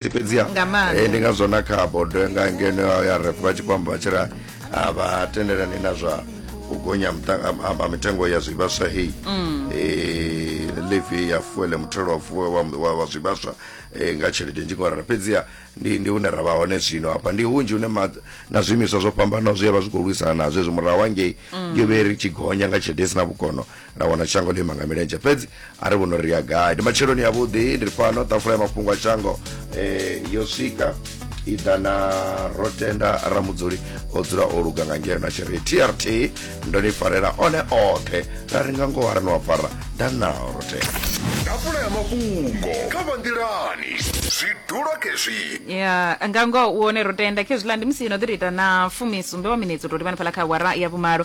fhedzi fhedziha Nga maanḓa. eh, ndi ngazwo na kha bodo nga ngeno ya ya ref vha tshi khou amba vha tshi ra a vha tendelani na zwa u gonya ha muta- ha- ha- ha mitengo ya zwivhaswa heyi Eh, levy ya fuele muthelo wa fuwe wa, wa, wa zwivhaswa eh, nga tshelede nzhi ngorara fhedziha ndi, ndi hune ra vha hone zwino hafha ndi hunzhi hune ma, na zwiimiswa zwo fhambanaho zwi ya vha zwi khou lwisana nazwo hezwi murahu hangei yo vhe ri tshi gonya nga tshelede i si na vhukono nda wana shango ḽima nga milenzhe fhedzi a ri vhono ri ya gai ndi matsheloni yavhuḓi ndi fhano ṱafula ya mafhungo a shango um yo swika i ḓa na ro tenda ramudzuli o dzula o luga nga ngeno na tshiri trt ndo ni farela one oṱhe ra ri nga ngoho a ri ni wa fara nda nao ro tenda ḓafula ya mafhungo kha vha nḓilani zwi dula khezwi ya nga ngoho u hone ro tenda khezwiḽa ndi musi no ḓi tou ita na fumisumbe wa minetse u tou livhana fhala kha awara ya vhumalo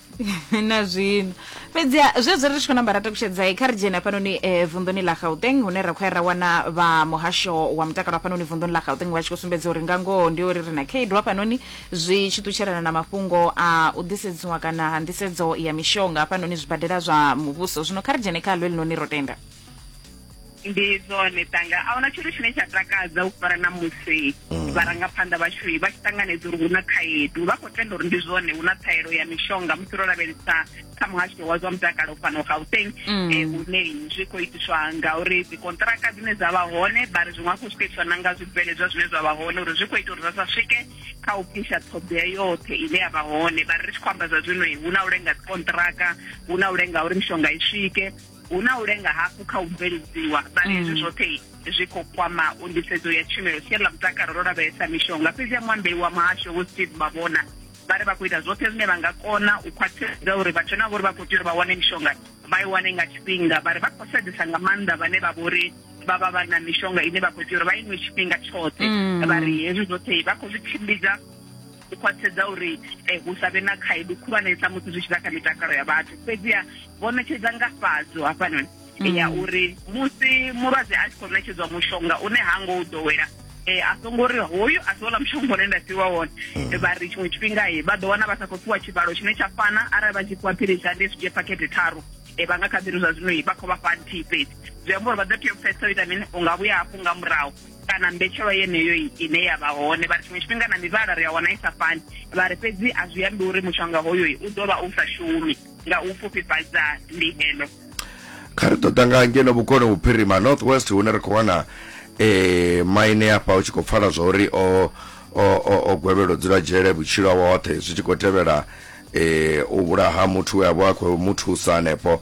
na zwino fhedziha zwezwo ri tshi khou namba ra takushedzai kha ri dzhene hafhanoni um eh, vunḓuni ḽa gauteng hune ra khou ya ra wana vha muhasho wa mutakalo hafhanoni vunḓuni ḽa gauteng vha tshi khou sumbedza uri nga ngoho ndi uri ri na khaedu hafhanoni zwi tshi ṱutshelana na mafhungo a u ḓisedziwa kana ha nḓisedzo ya mishonga hafhanoni zwibadela zwa muvhuso zwino kha ri dzhene kha ḽo elinoni ro tenda ndi zwone tanga a huna tshithu tshine tsha takadza u fara na musi mm. vharangaphanḓa vhashui vha tshi ṱanganedza uri hu na khaedu vha khou tenda uri ndi zwone hu na ṱhaelo ya mishonga musi ro lavhelesa kha muhasho wa zwa mutakalo fhano gauteng mm. eh, hune zwi khou itiswa ngauri dzikontraka dzine dza vha hone vha ri zwiṅwe hafhu zwi khou itiswa na nga zwibveledzwa zwine zwa vha hone uri zwi khou ita uri zwa sa swike kha u pfisha ṱhoḓea yoṱhe ine ya vha hone vha ri ri tshi khou amba zwa zwino hu na u lenga dzikontraka hu na u lenga uri mishonga i swike hu na u lenga hafhu kha u bveledziwa vhari hezwi mm. zwoṱhe zwi khou kwama u nḓisedzo ya tshumelo siani ḽa mutakalo ro lavhelesa mishonga fhedzi ya muambeli wa muhasho vho steve mavhona vha ri vha khou ita zwoṱhe zwine vha nga kona u khwaṱhisedza uri vhathu na vhori vha khou tea uri vha wane mishonga vha i wane nga tshifhinga vha ri vha khou sedzesa nga maanḓa vhane vha vhori vha vha vha na mishonga ine vha khou tea uri vha inwe tshifhinga tshoṱhe mm. vha ri hezwi zwoṱhe vha khou zwi tshimbidza u khwaṱhisedza uri eh, hu sa vhe na khaedu khulwanesa musi zwi tshi ḓa kha mitakalo ya vhathu fhedziha vho ṋetshedza ngafhadzo hafhanoni mm. ya uri musi mulwadze a tshi khou ṋetshedzwa mushonga une ha ngo u ḓowela eh a songo ri hoyu a si ola mushonga une nda fhiwa wone mm. eh, vha ri tshiṅwe tshifhinga ye eh, vha ḓo wana vha sa khou fhiwa tshivhalo tshine tsha fana arali vha tshi fhiwa philisi ande zwi dzhie phakhethe tharu e vha nga kha ḓiri zwa zwino vha khou vha fha nthihi fhedzi zwi amba uri vha ḓo tea u pfesa u ita mini u nga vhuya hafhu nga murahu kana mbetshelwa yeneyo ine ya vha hone vha ri tshiṅwe tshifhinga na mivhala ri a wana i sa fani vha ri fhedzi a zwi ambi uri mushonga hoyo u ḓo vha u sa shumi nga u pfufhifhadza ndihelo kha ri ṱoḓa nga ngeno vhukoni vhuphirima north west hune ri khou wana eh maine afha u tshi khou pfala zwa uri o o gwevhelo dzula dzhele vhutshilo hawe hoṱhe zwi tshi khou tevhela eh u vhulaha muthu we a vha a khou mu thusa hanefho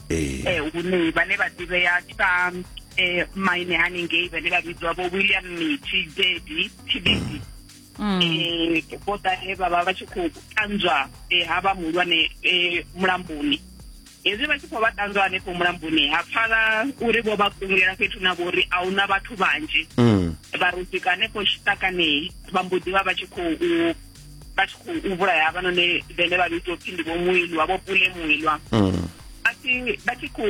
eh, eh hune vhane vha ḓivhea sa eh maine haningei vhane vha vhidzwa vho William Mithi Dedi Tibidi mm. eh vho ḓa he vha vha vha tshi khou ṱanzwa eh ha vha muhulwane eh mulamboni hezwi vha tshi khou vha ṱanzwa hanefho mulamboni ha pfala uri vho vha kungulela fhethu na vho uri a huna vhathu vhanzhi mm. vha rusika hanefho tshiṱakanei vha mbo ḓi vha vha tshi khou vha tshi khou vhulaya havhanoni vhene vha vhidzwa upfhi ndi vho muilwa vho pule muilwa mm. vha tshi khou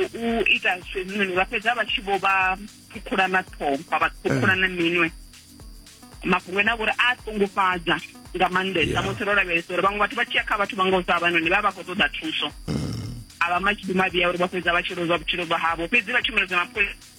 ita zwinoni vha fhedza vha tshi vho vha ṱhukhula na ṱhompha vha ṱhukhula na minwe mafhungo ene a vhori a ṱungufhadza nga maanḓesa musi ro lavhelesa uri vhaṅwe vhathu vha tshiya kha vhathu vha nga u sa havhanoni vha vha khou ṱoḓa thuso mm. a vha matshidi mavhiya uri vha fhedza vha tshi lozwa vhutshilo vha havho fhedzi vha tshumelo dza mapholisa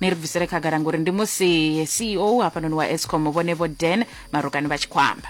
ni ri bvisele khagala ngori ndi musi ceo hafhanoni wa escom vhone vho dan marukani vha tshi khou amba